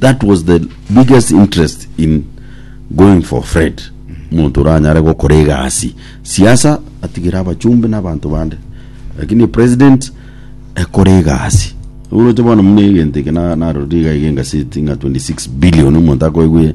That was the biggest interest in going for Fred. Omonto oranyare gokora egasi siasa atigere abachumbi na abanto bande. Lakini president ekore egasi. Oroche bono muna egento eke na narorire iga iga engaseti ng'a 26 billion omonto akoigwe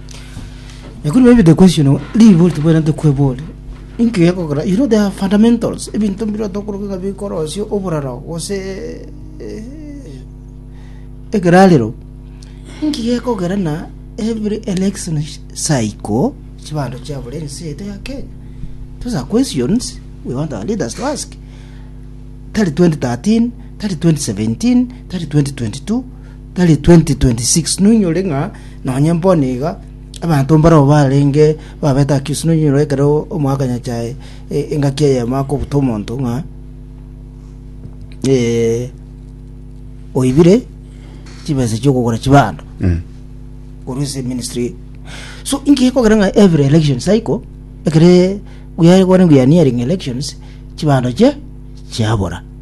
Ekero maybe the question o- ribori tibwerente kwebori inki gekogera you know there are fundamentals ebinto mbire otokoroka ng'a bikorosia oboraro gose eh, ekerarero inki gekogera na every election cycle chibando chiabora ense eye ya kenya those are questions we want our leaders to ask tari 2013 tari 2017 tari 2022 tari 2026 noinyore ng'a nonye mbono iga abanto mbarao barenge babete accused noinyore ekero omoakanyacha e- e- engaki eyemo akobuta omonto ng'a eh, oibire chibesa chiokogora chibando Mm. korwa ase ministry so inki gekogera ng'a every election cycle ekere buyare kwane buyaniering elections chibando chie chiabora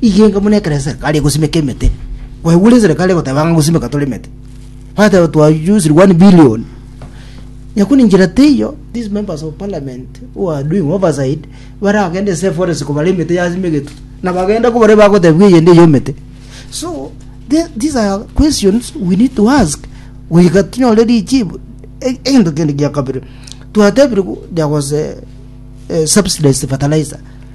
Igenga buna ekero esereka are gosimeka emete. Kwaigure esereka are goteba ng'a gosimeka tore emete. Bateba twa use 1 billion. Nyakuni njira teiyo, these members of parliament who are doing oversight baragende ase forest kobara emete yasimegetwe. Na bagenda kobara bagotebwa eyende eyo emete. So the- these are questions we need to ask goika tinyore richibu. E- Egento kende gia kabere twatebire gu- ya gose eh, subsidized fertilizer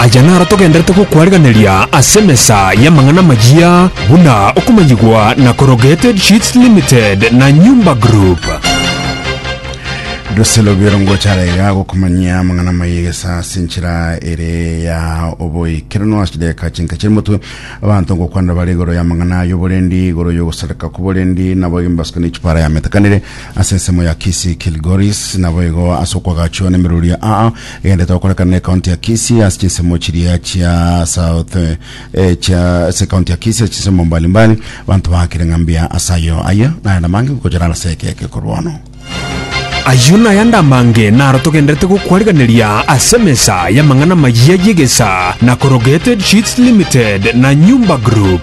Aya naro togenderete gokwarigereria ase emesa y'amang'ana amayia buna okomanyigwa na Corrugated Sheets Limited na Nyumba Group. Russell Obiero ngochara iga gokumanyia amang'ana amaiga gesa ase enchera ere ya oboikeranu ase chideka chinka chiri motwe abanto ngokwanera bare igoro ya amang'ana y'oborendi igoro y'ogosareka kw'oborendi nabo egembaswa ne chipara yametakanire ase ensemo ya Kisii Kilgoris naboigo ase okwagachiwa nemeroria aa Egento tokorekana ne county ya Kisii ase chinsemo chiria chia south eh, chia ase county ya Kisii ase chinsemo mbali mbali banto baakire ng'a mbuya ase ayo aye naye namange gokochora ase ekeke korwa ono. Ayio nayande amange naro togenderete gokwariganeria ase emesa y'amang'ana amayia y'egesa na Corrugated Sheets Limited na Nyumba Group.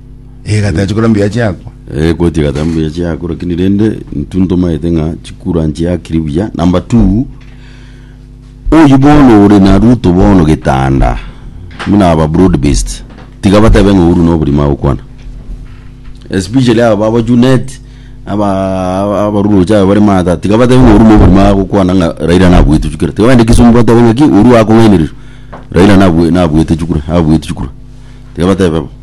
Egata chikora mbuya chiakwa. Eh, koti egata mbuya chiako lakini rende intu ntomaete ng'a chikura nchiakiri buya number two oyi bono ore na ruto bono getanda buna aba broad based tiga batebe ng'a uru noborimo agokwana especially aba baba junet aba aba- abaruroche aba bare mata tiga batebe ng'a uru noborimo agokwana ng'a raila nabuete chikura tiga bagende kisumu batebe ng'aki uru akong'ainereria raila nabue nabuete chikura abuete chikura tiga batebe bo